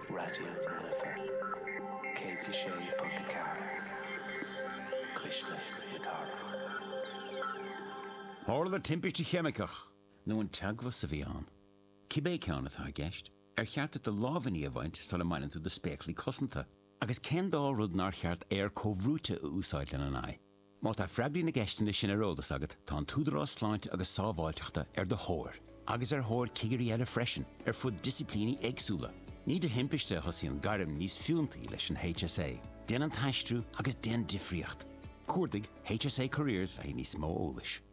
Raidió na Life 106.4 Cuisle na Cathrach. Tharla timpiste cheimiceach. nó an teagmhas a bhí ann. Cibé ceann atá i gceist, ar cheart duit do lámhainní a bhaint sula mbaineann tú do spéaclaí cosanta? Agus cén dá rud nár cheart aer comhbhrúite a úsáid lena n-aghaidh? Má tá freagraí na gceisteanna sin ar eolas agat, tá an tÚdarás Sláinte agus Sábháilteachta ar do thóir, agus ar thóir cigirí eile freisin, ar fud disciplíní éagsúla. Ní de thimpiste a thosaíonn gairm níos fiúntaí leis an HSA. Déan an t-aistriú agus déan difríocht! Cuardaigh HSA Careers le haghaidh níos mó eolais.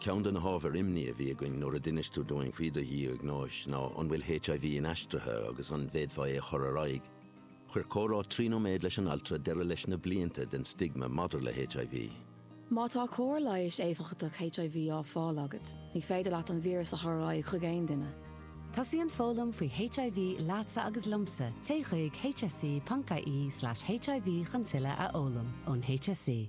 Ceann de na hábhair imní a bhí againn nuair a d'inis tú dúinn faoi do dhiagnóis ná an bhfuil HIV inaistrithe agus an bhféadfá é a chur ar aghaidh. Chuir comhrá trí nóiméad leis an altra deireadh leis na blianta den stigma maidir le HIV. Má tá cóir leighis éifeachtach HIV á fáil agat, ní féidir leat an víreas a chur ar aghaidh chuig aon duine. Tosaíonn foghlaim faoi HIV leatsa agus liomsa, téigh chuig hse.ie tulslais hiv chun tuilleadh a fhoghlaim ón HSE.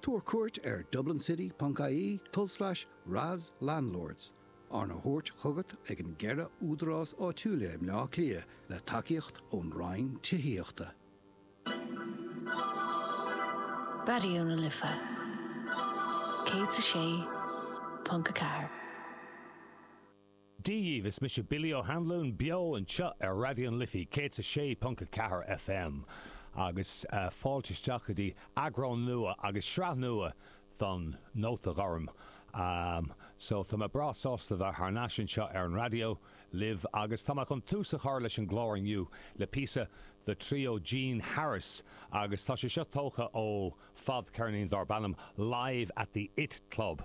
Tabhair cuairt ar dublincity.ie tulslais RAS landlords, arna thabhairt chugat ag an gceithre údarás áitiúla i mBleá Cliath le tacaíocht ón Roinn Tithíochta. Raidió na Life 106.4. Dia dhíbh, is mise Billy Ó hAnluain beo anseo ar Raidió na Life 106.4 FM agus fáilte isteach go dtí eagrán nua agus sraith nua den Nóta Gorm. So, tá mé breá sásta bheith thar n-ais anseo ar an raidió libh agus tá mé chun tús a chur leis an gclár inniu le píosa de Trio Gene Harris agus tá sé seo tógtha ó Fadcheirnín dárb ainm Live at the It Club,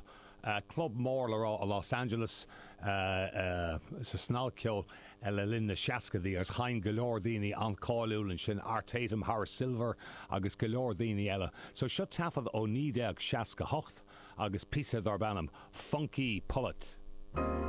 club mór le rá i Los Angeles, sa snagcheol le linn na seascaidí, agus sheinn go leor daoine an-cháiliúil ansin, Art Tatum, Horace Silver agus go leor daoine eile. So seo taifead ó 1968 agus píosa dárb ainm Funky Pullet.